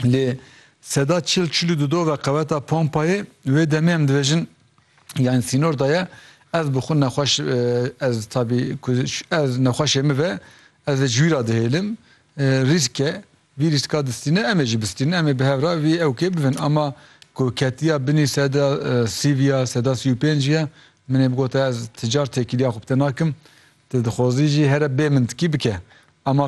lê seda çil çil û du do ve qeweta pompayê wê demê em dibêjin yani sînor da ye ez bi xwe nexweş ez tabî ez nexweşê min ve ez ê ji wî re dihêlim rîsk e vî rîska distîne em ê jî bistînin em ê bi hev re vî ewkê bibin ama ku ketiya binî seda sî viya seda sî û pênc viya min ê bigote ez ti car têkiliya xwe bi te nakim Ti dixwazî jî here bê min tikî bike. Ama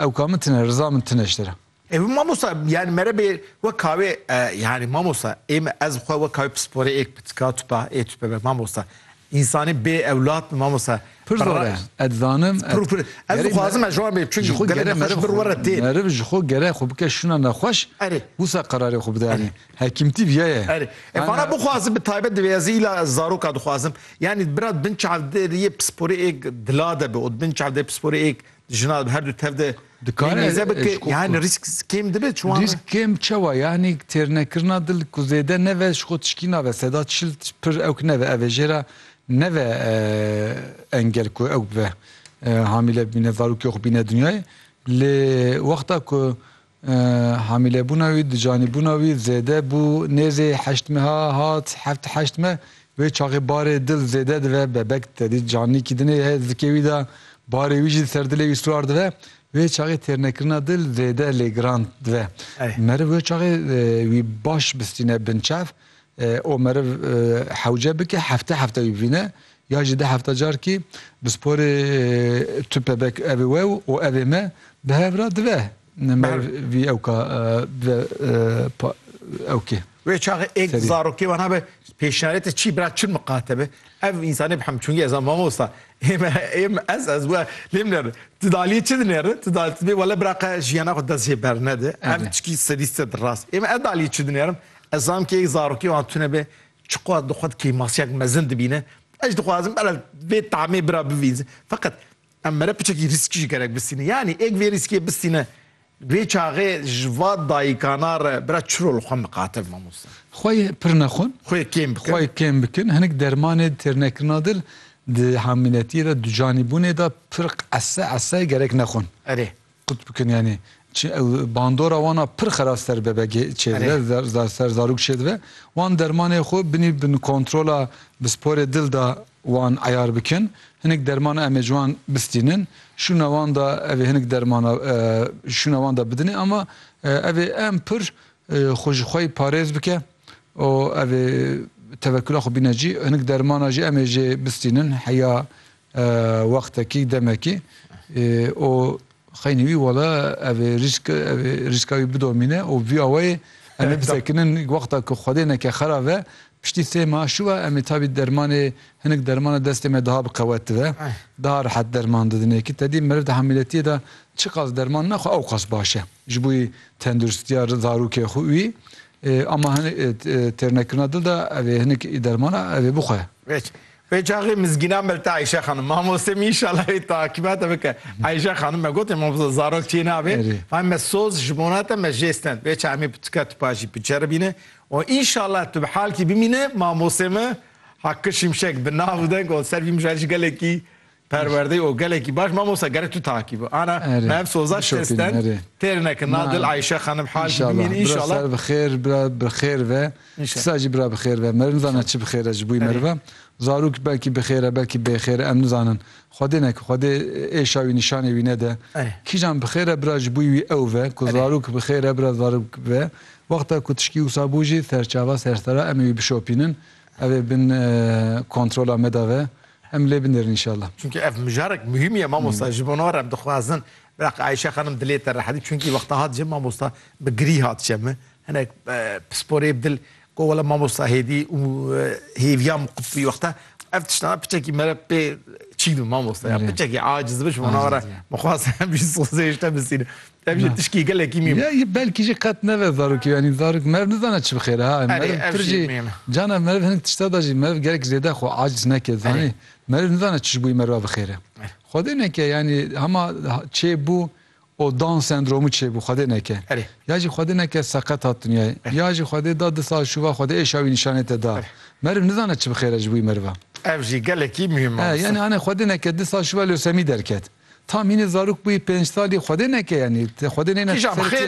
ewka min tine, riza min tine ji te re. Ê mamosta yani mere bê we kawê yani mamosta ê me ez xwe we kawê pisporê ê pitika tupa ê tupe be mamosta. Însanî bê ewlad bi mamosta. Pir zor e. Ez dizanim. Pir pir. Ez dixwazim ez ji wan bê çi ji xwe gere meriv xwe re tê. Meriv ji xwe gere xwe bike şûna nexweş wisa qerarê xwe bide. Hekîmtî viya ye. Erê. E vana bixwazim bi taybet divê ez îla ez zaroka dixwazim. Yanî bira di bin çav de riyê pisporê êk dila de bi û di bin çav de pisporê êk di jina de bi herdu tev de Dikare nêze bi ke yanî rîsk kêm dibe çi wan Rîsk kêm çewa yanî têrnekirina dil ku zêde neve ji xwe tişkî nabe seda çil pir ewk neve ev ê jê re neve engel ku ewk bibe hamîle bibîne zarokê xwe bîne dinyayê lê wexta ku Hamîlebûna wî di canîbûna wî zêde bû, nêzê heşt meha hat, heft heşt meh, wê çaxê barê dil zêde dive, bebek tedî canîkî dinê ye, zikê wî de barê wî jî ser dilê wî suar dive, wê çaxê têrnekirina dil zêde lê giran dive. Meriv wê çaxê wî baş bisîne binçav û meriv hewce bike hefte hefte wî bivîne, Ya jî deh hefte carkî bi sporê tu pebek evê wew û evê me bi hev re dive me vî ewka dive ewkê. Wê çaxê êk zarokê wana be pêşnarête çî bira çi miqate be ev însanê bi hem çungî ez a mamosta ême ême ez ez we lê min nêre tu daliyê çi dinêre tu daliyê tu bê wele bira qe jiyana xwe dest jê bernede ev çikî sedî sed rast ême ez daliyê çi dinêrim ez zam kê êk zarokê wan tune be Çiqas di xwe de kêmasiyek mezin dibîne, ez dixwazim bela vê tamê bira bivînze. Feqet em mere piçekî rîskî ji gerek bistîne. Yanî êk vê rîskê bistîne vê çaxê ji va dayikana re bira çi rol xwe miqatil mamosta? Xwe yê pir nexwin. Xwe yê kêm bikin. Xwe yê kêm bikin. Hinik dermanê di têrnekirina dil di hamîletiyê de, ducanîbûnê de pir ese ese gerek nexwin. Erê. Qut bikin yanî çi ew bandora wan a pir xera ser bebegê çêdibe zar ser zarok çêdibe wan dermanê xwe binî bin kontrola bi sporê dil da wan eyar bikin hinik dermana em ê ji wan bistînin şûna wan da ev ê hinik dermana şûna wan da bidinê ama ev ê em pir xwe ji xwe yî parêz bike û ev ê tevekula xwe bîne cî hinik dermana jî em ê jê bistînin heya Wextekî demekî û xeynî wî wala ev rîsk ev rîska wî bidomîne û vî awayê em ê bisekinin wexta ku Xwedê neke xera ve piştî sê ma şû va em ê tabî dermanê hinik dermana destê me daha bi qewet dive daha rehet derman didin êkî tedî meriv di hamîletiyê de çiqas derman naxwe ewqas baş e ji bo tenduristiya zarokê xwe wî ama hinik têrnekirina dil de ev ê hinik dermana ev ê bixwe. Vê çaxê mizgîna me li te Ayşe xanim mamoste mî înşallah wê takiba te bike Ayşe xanim me gotê mamoste zarok çê nabê fahim me soz ji bona te me jê stend vê çaxê mî pirtika tu pa jî biceribîne û înşallah tu bi halkî bimîne mamostê me Hakkı Şimşek bi nav û deng û ser vî mijara jî gelekî Perwerdeyê o gelekî baş mamosta gerek tu takî bi. Ana me ev soza şesten têr nekin. Na dil Ayşe xanim hal jî bimînin inşallah. Bira ser bi xêr, bira bi xêr ve. Kisa jî bira bi xêr ve. Meriv nizane çi bi xêr e ji bo meriv e. Zarok belkî bi xêr e belkî bê xêr e em nizanin. Xwedê neke xwedê êşa wî nîşanê wî nede. Kîjan bi xêr e bira ji bo wî ew ve. Ku zarok bi xêr e bira zarok ve. Wexta ku tişkî wisa bû jî serçava sersera em ê wî bişopînin. Ev ê bin kontrola me de ve. Em lê binêrin înşallah. Çunki ev mijarek muhîm ye mamosta ji bona re em dixwazin Biraq Ayşe xanim dilê te rehet bî çunki wexta hat jin mamosta bi girî hat je min hinek pisporê bi dil got wele mamosta hêdî û hêviya min qut bû wexta ev tiştana piçekî me re pê çîn bû mamosta ya piçekî aciz bû ji bona re mixwest em jî sozê ji te bisînin Ev jî tişkî gelekî mîm e. Ya belkî jî qet nebe zarokê yanî zarok meriv nizane çi bixêre ha. Erê Meriv ev pir jî jî mîm e. cana meriv hinek tişta de jî meriv gelek zêde xwe aciz neke zanî. Erê. Meriv nizane çi ji bo wî meriva bixêre. Erê. Xwedê neke yanî hema çêbû û down sendromu çêbû xwedê neke. Erê. Ya jî xwedê neke seqet hat dinyayê. Erê. Ya jî xwedê da di sal şûva xwedê êşa wî nîşanê te da. Erê. Meriv nizane çi bixêre ji bo wî meriva. Ev jî gelekî mîm e He, mamosta. yanî hanê xwedê neke di sal şûva leusemî derket. Tam hînî zarok bûyî pênc salî xwedê neke yanî xwedê nêne ser çê.